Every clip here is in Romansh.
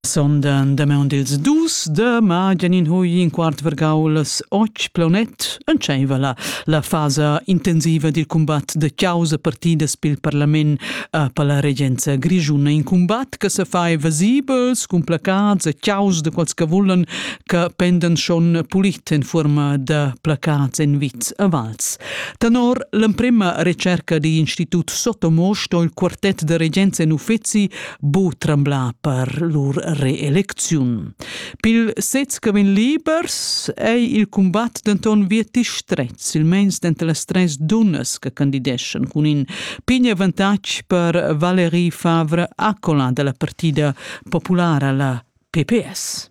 Sondan damaun dils dus de Magenin hui in quart vergaulas och plonet entscheiva la fasa intensiva dil combat de causa partidas pil parlament a per la regenza grischuna in combat che se fai vesibels cun placats e caus de quals che vullen che pendan schon pulit en forma de placats en vits a vals Tenor l'emprema recerca digl institut Sotomo sto il quartet de regenza en uffeci bu tremblar per lur reelecziun. Pil sez che vegn libers ei il combat denton vieti stret, silmeins denter las tres dunnas che candideschan cun in pign avantatg per Valérie Favre Accola della partida populara la PPS.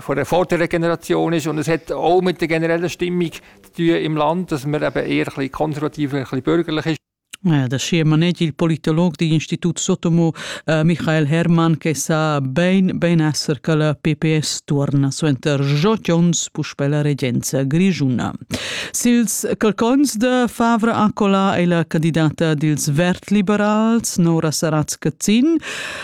von der Folterregeneration ist und es hat auch mit der generellen Stimmung zu tun im Land, dass man eben eher ein bisschen konservativer, ein bisschen bürgerlich ist. Da schema net il politolog di Institut Sotomo eh, Michael Hermann che sa ben ben esser che la PPS torna suenter Jot Jones puspè la regenza grigiuna. Sils calcons de Favre Acola è la candidata dils vert liberals Nora Saratska Zin.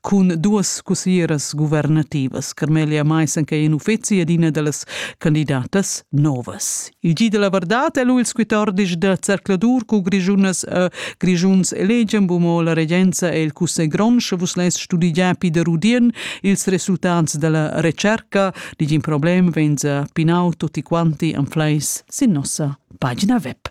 Cun duas cussieras guvernativas, Carmelia Maissen che è in uffizi ed ina da las candidatas novas. Il gi della verdad è lu ils 14 da Zercladur cu Grischunas e Grischuns elegian bumo la regenza e il cussegl grond, sche vus less studigiar Peter Rudien ils resultats della recerca, digin problem venza pinau tutti quanti an fleis sin nossa pagina web.